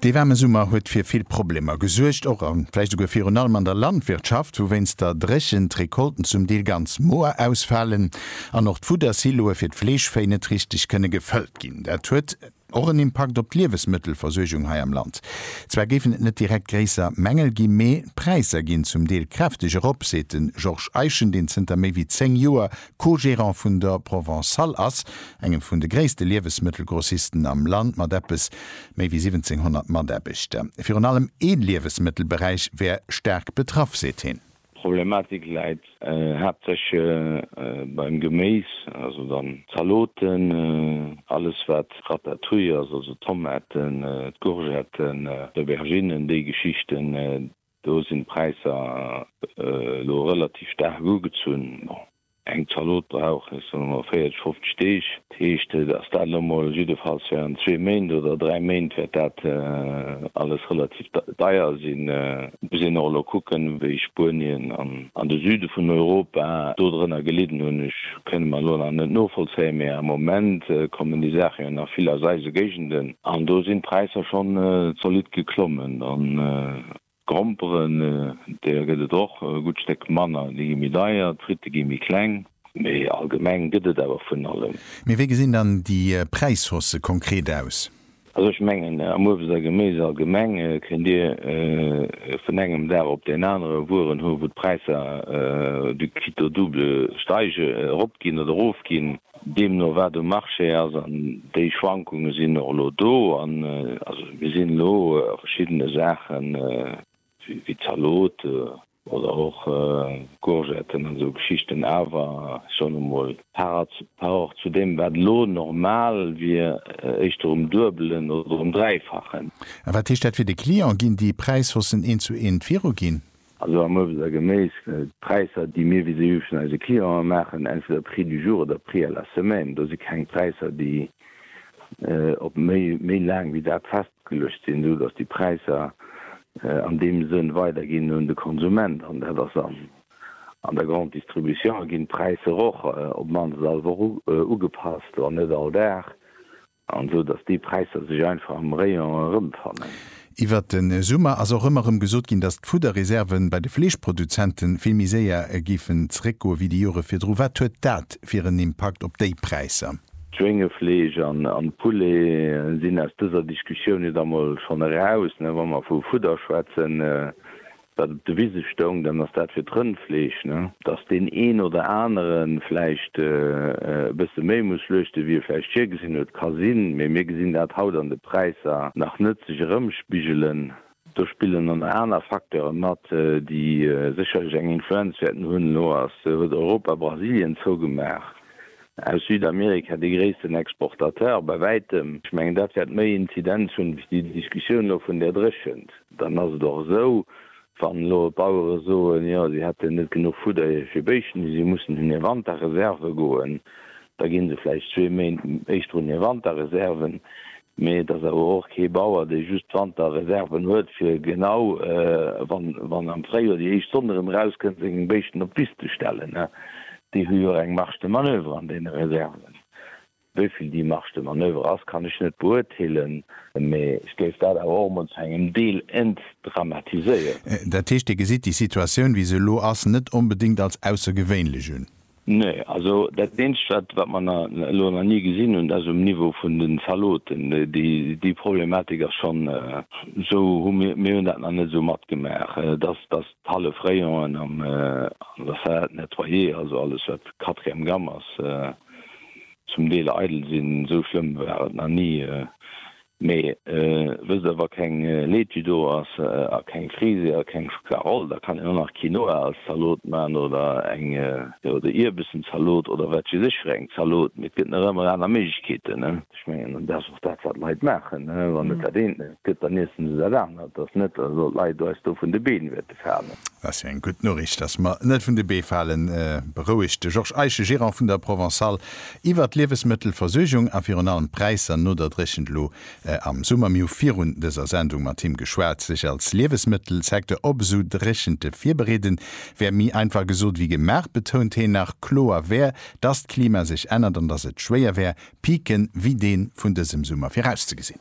Dee waarme Summer huet fir vill Problemer gesuergt, och a vläicht esouguer virun allem an der Landwirtschaft, wou wéinst der Dréchent d'Recolten zum Deel ganz moer ausfalen an och d'Fuddersiloe fir d'Fleeschvéi net richteg kënne gefëllt ginn. Dat huet och en Impakt op d'Liewesmëttelversuergung hei am Land. Zwar géifen et net direkt gréisser Mängel ginn, mee d'Präisser ginn zum Deel kräfteg erop, seet de Georges Eischen, deen zënter méi wéi 10 Joer Co-Gerant vun der Provençale ass, engem vun de gréisste Liewesmëttelgrossisten am Land mat eppes méi wéi 1700 Mataarbechter. Virun allem ee Liewesmëttelberäich wär staark betraff, seet hien. D'Problematik läit haaptsächlech beim Geméis, also dann d'Zaloten, alles wat Ratatouille ass, also Tomaten, d'Courgetten, d'Auberginnen, déi Geschichten. Do sinn d'Präisser elo relativ staark ugezunn. Bon, eng Zalot brauch ech soen emol 40, 50 Deeg. Dat heescht, dass dat elo mol jiddefalls während zwee Méint oder dräi Méint wäert dat alles relativ deier sinn. Et muss een och elo kucken, wéi Spuenien an de Süde vun Europa dodrënner gelidden hunn. Ech. kënne mer elo nach net novollzéien, mä am Moment kommen déi Saache jo nach vill aus eise Géigenden. An do sinn d'Präisser schonn zolidd geklommen. An d'Gromperen, deeër gëtt et och e gutt Stéck manner, déi gi méi deier, d'Fritte gi méi kleng. Mee allgemeng gëtt et awer vun allem. Mee wéi gesinn dann déi Präishausse konkret aus? Also ech mengen, am Uebst a Geméis allgemeng kënnt Dir vun engem Dag op deen anere Wueren hu wou d'Präisser du quitt au double steige, eropginn oder erofginn, deemno wat um Marché ass. An déi Schwankunge sinn och elo do. An also mir sinn elo a verschiddene Saachen, wéi Zalot, Oder och Courgetten an esou Geschichten. Awer schonn emol. Par Rapport zu deem, wat elo normal wier, éischter um Duebelen oder um Dräifachen. A wat heescht dat fir de Client? Ginn déi Präishaussen eent zu eent viruginn? Also am Uebst a Geméis, d'Präisser, déi mir vis-à-vis vun eise Clienten maachen, entweder Prix du jour oder Prix à la semaine, do si keng Präisser, déi op méi laang wéi dat festgelooss. Geluecht sinn, esou datt déi Präisser an deem Sënn weiderginn un de Konsument. An dat ass an an der Grande Distribution ginn d'Präisser och op d'mannst all Woch ugepasst, wann net all Dag, an esou datt déi Präisser sech einfach am Rayon erëmfannen. Iwwert de Summer ass och ëmmer erëm gesot ginn, datt d'Fudderreserven bei de Fleeschproduzenten vill méi séier géifen zeréckgoen, wéi déi Jore virdru. Wat huet dat fir en Impakt op déi Präisser? Schwéngefleesch an Poulet sinn aus dëser Diskussioun jo da mol schonn eraus. Wa mer vu Fudder schwätzen, dat op de Wise stoung, dann ass dat fir d'Rëndfleesch. Dass deen een oder anere vläicht e bësse méi muss schluechten, wéi e vläicht virgesinn huet, ka sinn, mee mir gesinn dat haut an de Präisser nach net sech erëmspigelen. Do spillen dann nach aner Facteuren mat, déi sécherlech eng Influenz wäerten hunn. Elo huet Europa Brasilien zougemaach, aus Südamerika dee gréissten Exportateur bei wäitem. Ech mengen, dat wäert méi Inzidenz hunn wéi déi Diskussioun elo vun där Dréchent. Dann ass et och esou, wann elo d'Bauere soen, jo si hätten net genuch Fudder fir Béischten, déi si mussen hunn hir Wanterreserve goen, Da ginn se vläicht zwee Méint éischter un hir Wanterreserven. Mee et ass awer och kee Bauer, dee just Wanterreserven huet, fir genau wann am Fréijoer déi éischt Sonn erëm erauskënnt, seng Béischten op d'Wiss ze stellen. Déi hu jo och eng Marge de manoeuvre an deene Reserven. Wéi vill déi Marge de manoeuvre ass, kann ech net beurteelen. Mee ech géif dat awer och emol zu engem Deel entdramatiséieren. Dat heescht, Dir gesitt déi Situatioun, wéi se elo ass, net onbedéngt als aussergewéinlech un? Nee, also dat eenzegt wat wat mer na elo nach ni gesinn hunn, ass um Niveau vun den Zaloten. Déi déi Problematik ass schonn esou, hu mir mir hunn dat nach net esou matgemaach, dass dass d'hallef Rayon'en am an der Salade nettoyée, also alles wat quatrième gamme ass, zum Deel eidel sinn. Esou schlëmm war et nach ni. Mee wësst der, wa keng Laitue do ass a keng Frise a keng Schokla-Roll, da kann een och nach Quinoa als Zalot man oder eng, jo, oder Ierbessen-Zalot oder wat weess ech fir eng Zalot. Mee et gëtt nach ëmmer aner Méiglechkeeten, ne? Ech mengen, an dat ass och dat, wat d'Leit maachen, ne? Wann et dat eent net gëtt, dann iessen se dat anert. Et ass net, dass elo d'Leit eis do vun de Been wippen. falen. Dat ass jo eng gutt Noriicht, dass mer net vun de Bee falen, berouegt de Georges Eische, Gerant vun der Provençale, iwwert d'Liewesmëttelversuergung a virun allem d'Präisser no der Dréchent elo am Summer. Mir hu virun dëser Sendung mat him geschwat. Sech als Liewesmëttelsecteur op esou Dréchente virbereeden, wär méi einfach gesot wéi gemaach, betount heen. Nach kloer wär, dass d'Klima sech ännert an dass et schwéier wär, Piken wéi dee vun dësem Summer virauszegesinn.